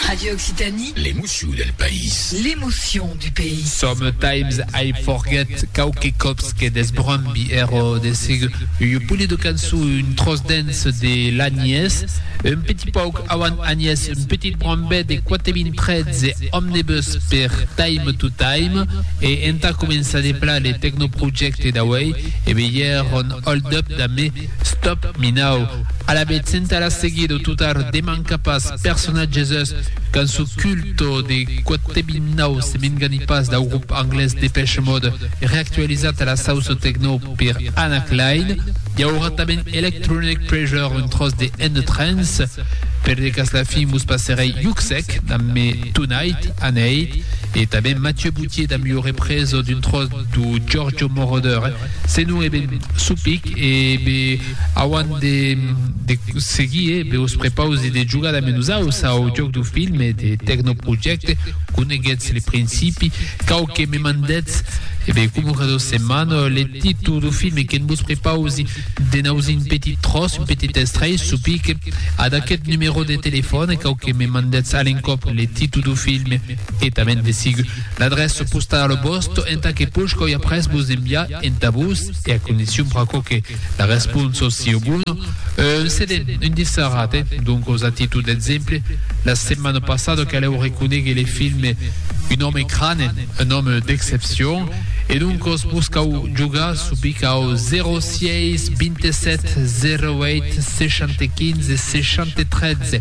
Radio Occitanie. L'emocion del país. L'emocion du pays. Sometimes I forget quauque còps que desbrombi ero de sigue ua polia de cançon un tròç dens de l'Agnés un petit pauc auant Agnés un petit brombet de 4013 Omnibus per Time to Time e entà començar de pla le tecnoprojècte d'auei e be ièr on hold up damb me Stop, Minau, alavetz entà la seguir o totar de mancar pas persona Jesus, cançó culto de Quatebinau se m'engani pas dau grup anglés Depeche Mode reactualizat a la sauço techno per Anna Klein, i aurà tanben Electronic Pressure un tròç de End Trance, per de cas la fin vos passerèi Yuksek damb Me Tonight, Aneit, e tanben Mathieu Boutier damb ua represa d'un tròç to Giorgio Moroder eh? Se non e ben supic e be auant de de seguir eh? Be os prepausi de jogar damb nosaus au jòc do film e de tecnoprojècte Coneguetz le principi cau que me mandetz e be coma cada setmana le títol do film que'n vos prepausi de nausir un petit tròç, un petit estrelh supic ad aquest numero de telefòn cau que me mandetz a l'encòp le títol do film e tanben de sigur L'adrèça postala vòsta entà que pòscau après vos enviar entà vos e a condicion pr'aquò que la responsa sieu bona, un CD, un dissarat, eh? Doncas a títol d'exemple, la setmana passada calèu reconéguer le filme Un homme crâne, un homme d'exception, e doncas vos cau jogar su picau 06 27 08 65 63.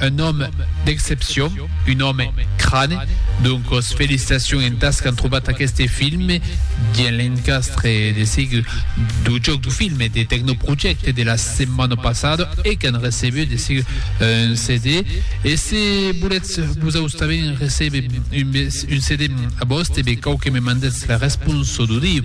Un òme d'excepcion, un òme crane, doncos felicitacion entàs qu'an trobat aqueste filme dins l'encastre de sigle du jòc du filme de Tecnoprojecte de la setmana passada e qu'an recebut de sigle un CD. E se volètz vosaus tanben receber un CD a vòste, be cau que me mandètz la responsa d'audiu.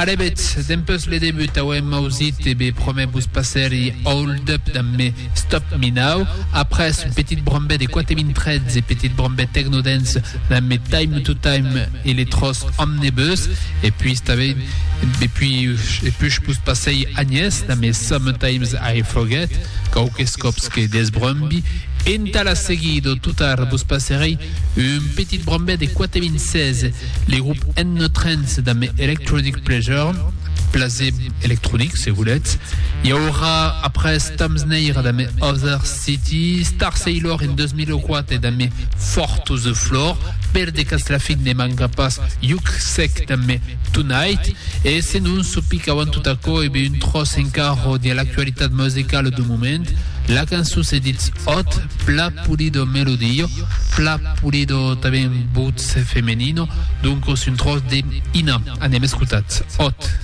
Arrevetz, dempus le debut auem ausit e be promè vos passèri Hold Up damb Me Stop Me Now, après un petit brombè de quate min trets e petit brombè techno dance damb Me Time To Time e le tròç Omnebus, e puis tanben e puis e push vos passèi Agnès damb Me Sometimes I Forget, quauques còps que desbrombi, entà la seguida o totar vos passerèi un petit brombè de quate min 16. Le grop N Trance damb Electronic Pleasure, plaser electronic se voletz, i aurà après Tom Sneira damb Other City, Starsailor en 2004 damb Four to the Floor, per de Castlafic ne manca pas Yuksek damb Tonight, e senon çò pic auant tot aquò e be un tròç encara de l'actualitat musicala dau moment, la cançon se ditz Hot, Pla Pulido Melodillo, Fla Pulido tanben voce femenino, doncos un tròç de Ina. Anem escotat. Ot.